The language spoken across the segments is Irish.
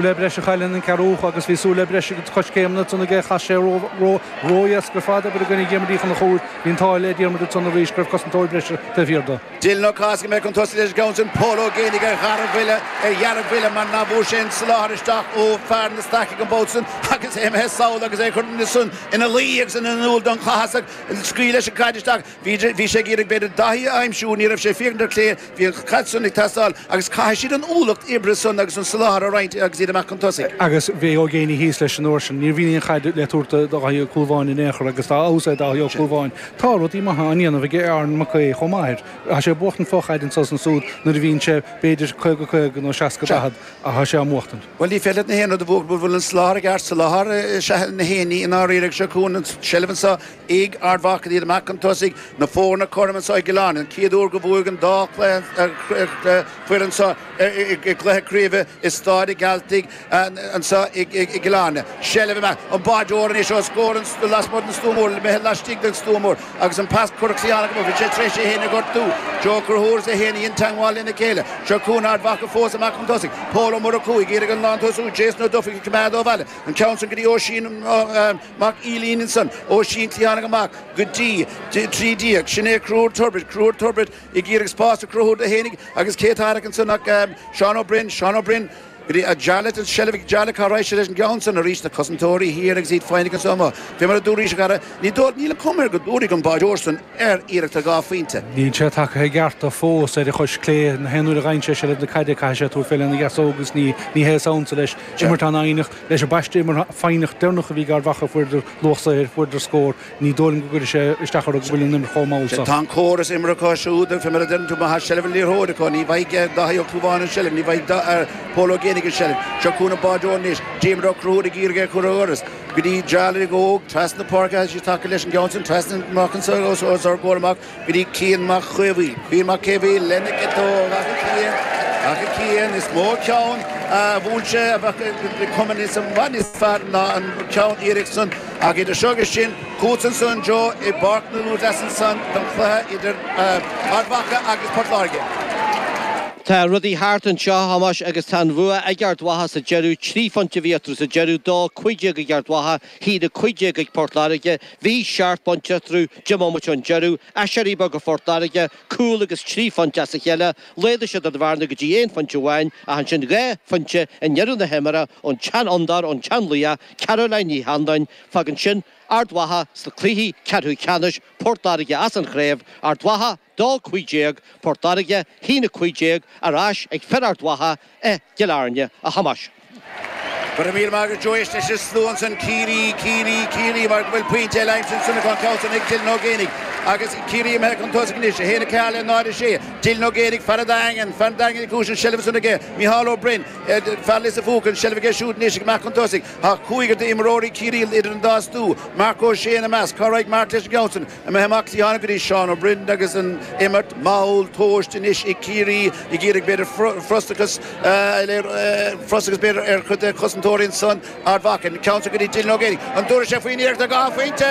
le breis a chur leis an gceathrú cúl agus bhí súil le breis ag coiscéimeanna Tony ach chas sé ró-dheas go rabhthas ag obair i gcoinne Dhiarmaid Uí Chonchúir. Bhí an t-ádh le Diarmaid ansan arís go raibh cosantóir breise taobh thiar de. Dylan O'Causky a bheidh chun tosaigh leis an gceann sin, Pól Ó Géinigh ar dheargbhuile mar nach bhfuair sé an soláthar isteach ó fear na staice ag an bpoll sin agus é imithe sall agus é ag cur san ina luí agus in iúl don Chathasach scaoil leis an caid isteach. Bhí sé ag iarraidh b'fhéidir Daithí a aimsiú, ní raibh sé saor ar clé, bhí an caid san ag teastáil agus caithfidh siad an ualach oibre san agus an soláthar a roinnt agus iad amach chun tosaigh. Agus bhí Ó Géinigh thíos leis an uair sin, níorbh aon chaid le tabhairt do Dhaithí Ó Clúmháin in aon chor agus dá fheabhas é Daithí Ó Clúmháin tá rudaí maithe á ndéanamh ag Aaron Mac Aoidh chomh maith air. Tá sé ag buachtaint fo-chaid anseo is ansúd nuair a bhíonn sé b'fhéidir caoga caoga nó seasca daichead ach tá sé á mbuachtaint. Bhuel ní féidir leat na haon rud a bhuachaint, bhuel an soláthar i gceart, soláthar is ea na héinní i ndáiríre agus seo chugainn an tseilbh anseo, Ag Ard Mhacha Neil Mac an Tosaigh na foirne cothrom anseo i gCill Airne, an chéad uair go bhfuil an dá foireann seo i gcluiche craoibhe i Stáid a' Ghealtaigh anseo i gCill Airne. Seilbh ag an mbáireoir anois os comhair lasmuigh den stua mór, imithe laistigh den stua mór agus an pas curach sa dhearg amuigh, bhí sé tar éis é féin a ghortú. Joe Ó Conchúir is é féin a dhein teagmháil lena chéile. Seo chugainn Ard Mhacha fós ag Mac an Tosaigh, Pól Ó Murchú ag iarraidh an lántosú Jason Ó Dufaigh a choimeád ó bhaol, an ceann san go dtí Oisín Mac Uilín ansan, Oisín cliathánaigh amach go dtí, de, trí déag. Sin é Crohúr Turbitt, Crohúr Turbitt, ag iarraidh spás a chruthú do fhéinig agus cé atá agat ansan ach, em, Seán Ó Broin, Seán Ó Broin, go dtí, a Jarlath in seilbh ag Jarlath cá raibh sé leis an gceann san arís, na Cosantóirí thiar agus iad féinig ansan amuigh. Fé mar a dúraís, a chara, ní dóigh, níl an chuma air go dtabharfaidh an báireoir san fé iarracht ar dhá phointe. Níl sé tagtha i gceart do fós ar a chois clé, an t-aon uair a gheibheann sé seilbh na caide caithfidh sé tabhairt fé lena dheasóg agus ní, ní hé is ansa leis imirt ann féinig. Leis an bpáiste imeartha foighneach deireanach a bhí ag Ard Mhacha fuaireadar luach saothair, fuaireadar scór, ní dóigh liom go gcuirfidh sé isteach orthu go bhfuil an imirt chomh mall Sea, tá seo. an córas imeartha acu siúd, fé mar a deireann tú, má tá seilbh an liathróide acu, ní bhfaighidh Dáithí Ó Clúmháin an seilbh, ní bhfaighidh Pól Ó Géinigh an seilbh. Seo chugainn an báireoir anois, Diarmaid Ó Conchúir ag iarraidh é a chur ó dhoras go dtí Jarlath óg, trasna na páirce, thairis, tacaigh leis an gceann sin, trasna amach anso os ár gcomhair amach, Bríd Cian Mac Caomhaoin, Cian Mac Caomhaoin, Lenic 2, Rachaidh Cian, Rachaidh Cian, is mó ceann a bhuail sé abhaile i gcomórtas i bhfad níos fearr ná an ceann deireanach san ach idir seo agus sin chughat anonn a Joe i bPáirc Naomh Rosa as ansan don chluiche idir Ard Mhacha agus Port Láirge. Tá rudaí thart anseo, Thomáis, agus tá an bhua ag Ard Mhacha sa deireadh, trí phointe a bhí eatarthu sa deireadh, dó, 15 ag Ard Mhacha, In aghaidh a cúig déag ag Port Láirge, Bhí, seacht bpointe eatarthu deich mbomaite ón deireadh, aiséirí beag ag Port Láirge, cúl agus trí phointe as a cheile, laghdaigh siad an bhearna go dtí aon phointe amháin ach ansin dhá phointe i ndeireadh na himeartha ón tseanfhondúir ón tseanlaoch, Caroline Ní Annluain, Fágann sin Ard Mhacha sna cluichí ceathrú ceannais, Port Láirge as an chraobh, Ard Mhacha. D'fhág 15 Port Láirge, shín 15 ar ais ag fir Ard Mhacha i gCill Airne, a Thomáis. Go raibh míle maith agat Joe Éist leis an slua ansin Ciarraí, Ciarraí, Ciarraí mar go bhfuil pointe eile aimsithe ansin acu an ceann san ag Dylan Ó Géibheannaigh agus Ciarraí imithe chun tosaigh anois, 1-4 le 0-6. Dylan Ó Géibheannaigh, fear an Daingin, fear an Daingin Uí Chúis an tseilbh ansin aige Micheál Ó Braoin, fear Lios an Phúca, an tseilbh aige siúd anois agus amach chun tosaigh. Tá cúigear d'imreoirí Chiarraí idir an dá stua, Marc Ó Sé ina measc. Cá raghaidh Marc leis an gceann sin? Imithe amach cliathánach go dtí Seán Ó Briain agus an imirt mall tomhaiste anois ag Ciarraí ag iarraidh b'fhéidir frustrachas frustrachas b'fhéidir ar chuid de chosantóirí ansan Ard Mhacha an ceann seo go dtí Dylan Ó Géibheannaigh an dtabharfaidh sé faoin iarracht ar dhá phointe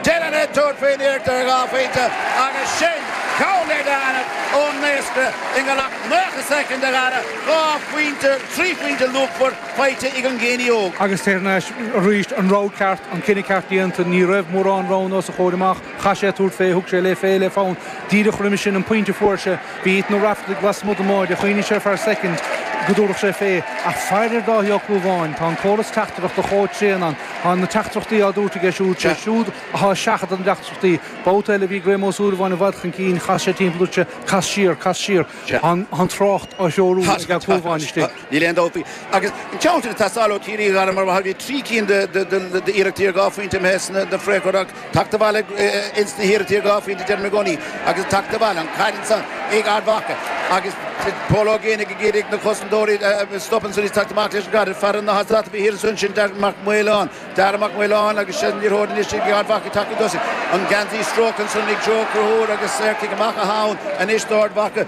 Dylan ag tabhairt faoin iarracht ar dhá phointe agus sin ceann eile anall ón naosca i ngiorracht 90 soicind an dara dhá phointe trí phointe luachmhar faighte ag an nGéibheannach. Agus thar n-ais arís, an rogha ceart, an cinneadh ceart déanta, ní raibh mórán roghanna os a chomhair amach, chaith sé tabhairt fé, thug sé le fé le fonn. Díreach roimis sin an pointe a fuair sé, bhí Ethan Ó Raifeartaigh lasmuigh don mbáide, chuimhnigh sé ar feadh soicind go dtabharfadh sé fé, ach féach ar Dáithí Ó Clúmháin, tá an córas teachtaireachta chomh tréan ann, tá na teachtaireachtaí á dtabhairt aige siúd, sé siúd atá ag seachadadh na dteachtaireachtaí. Babhta eile bhí Graham Ó Súilleabháin i bhfad chun cinn, chas sé timpeall, dúirt sé cas siar, cas siar, tá an trácht á threorú ag Ó Clúmháin istigh. Níl aon dabht faoi. Agus an ceann sin ag teastáil ó Chiarraí, Dhanann, mar bhí trí cinn d'iarrachtaí ar dhá phointe a bheith sna freagra ach tacht abhaile ins na hiarrachtaí ar dhá phointe deirim i gcónaí agus tacht abhaile an cúilín san ag Ard Mhacha agus Pól Ó Géibheannaigh go géar ag na cosantóirí a stop an suirí tacht amach leis an gcaid fear na hasat a bhí thiar ansan sin Darragh Mac Maoláin Darragh Mac Maoláin agus sé níor thóir níos ag Ard Mhacha tacht chun tosaigh an geansaí stróicthe ansan ag Joe Ó Conchúir agus cic amach atá ann anois d'Ard Mhacha